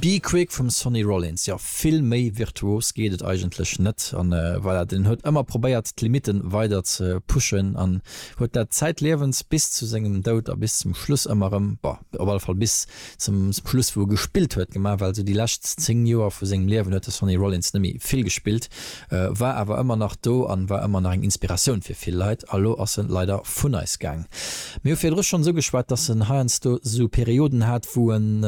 Be Quick vum Sonny Rollins, jo vill méi virtuos geet et eigentlech net. An voilà, den huet ëmmer probéiert d'Limiten weider ze pushen an huet dat zäitliewens bis zu sengem Doud a bis zum Schluss ëmmer rëm, bon op alle Fall bis zum Schluss wou e gespillt huet, gemaach. Well sou déi lescht 10 Joer vu sengem Liewen huet de Sonny Rollins net méi vill gespillt. war awer ëmmer nach do an war ëmmer nach eng Inspiratioun fir vill Leit. A lo ass en leider vun eis gaang. Mir hu virdru schonn esou geschwat, dass en heiansdo esou Perioden hat, wou en,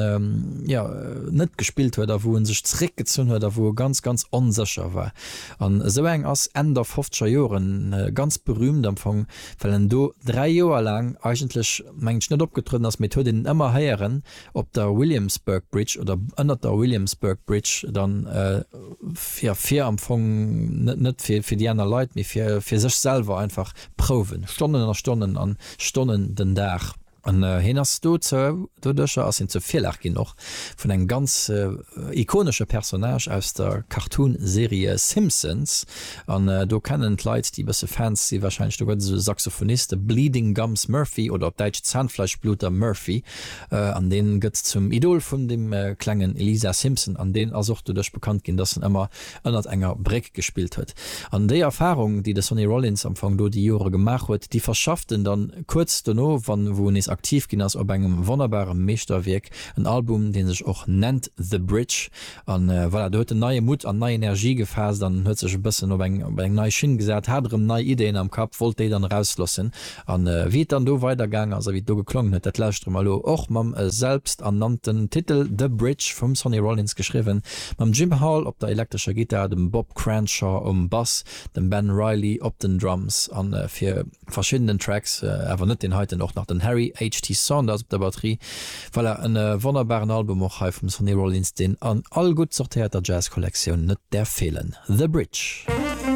jo, net gespillt huet a wou en sech zeréckgezunn huet a wou e ganz, ganz onsécher war. An esou eng ass Enn der fofzeger Joren ganz berühmt am Fong, well en do dräi Joer laang eigentlech, mengen ech, net opgetrueden ass, mee et huet een en ëmmer héieren, op der Williamsburg Bridge oder ënnert der Williamsburg Bridge dann fir fir am Fong net net fir fir déi aner Leit mee fir fir sech selwer einfach prouwen Stonnen a Stonnen an Stonnen den Dag an hien ass do zou doduercher ass hien zur Virlag ginn och vun engem ganz ikonesche Personnage aus der Cartoon Serie Simpsons an do kennen d'Leit déi e bësse Fans si wahrscheinlech do gëtt et esou e Saxophonist de Bleeding Gums Murphy oder op däitsch Zahnfleischbluter Murphy. An deen gëtt zum Idol vun dem klengen Lisa Simpson an deen ass och doduerch bekannt ginn, dass en ëmmer ënnert enger Bréck gespillt huet. An déi Erfarung, déi de Sonny Rollins am Fong do déi Jore gemaach huet, déi verschafft en dann kuerz dono, wann e wou nees aktiv ginn ass, op engem wonnerbare Meeschterwierk, en Album, dee sech och nennt The Bridge, A voilà, do huet en neie Mutt an nei Energie gefaasst an huet sech e bëssen op eng, op eng nei Schinn gesat, hat erëm nei Ideen am Kapp, wollt déi dann erauslossen. A wéi et dann do weidergaang ass a wéi et do geklongen huet, dat lauschtere mer elo. Och mam selbsternannten Titel The Bridge vum Sonny Rollins geschriwwen, mam Jim Hall op der elektrescher Gittar, dem Bob Cranshaw um Bass, dem Ben Reilly op den Drums a fir. verschiddenen Tracks, awer net deen heiten, och nach den Harry HT. Saunders op der Batterie. Voilà, en wonnerbaren Album och hei vum Sonny Rollins, deen an all gutt sortéierter Jazz-Kollektioun net däerf feelen. The Bridge.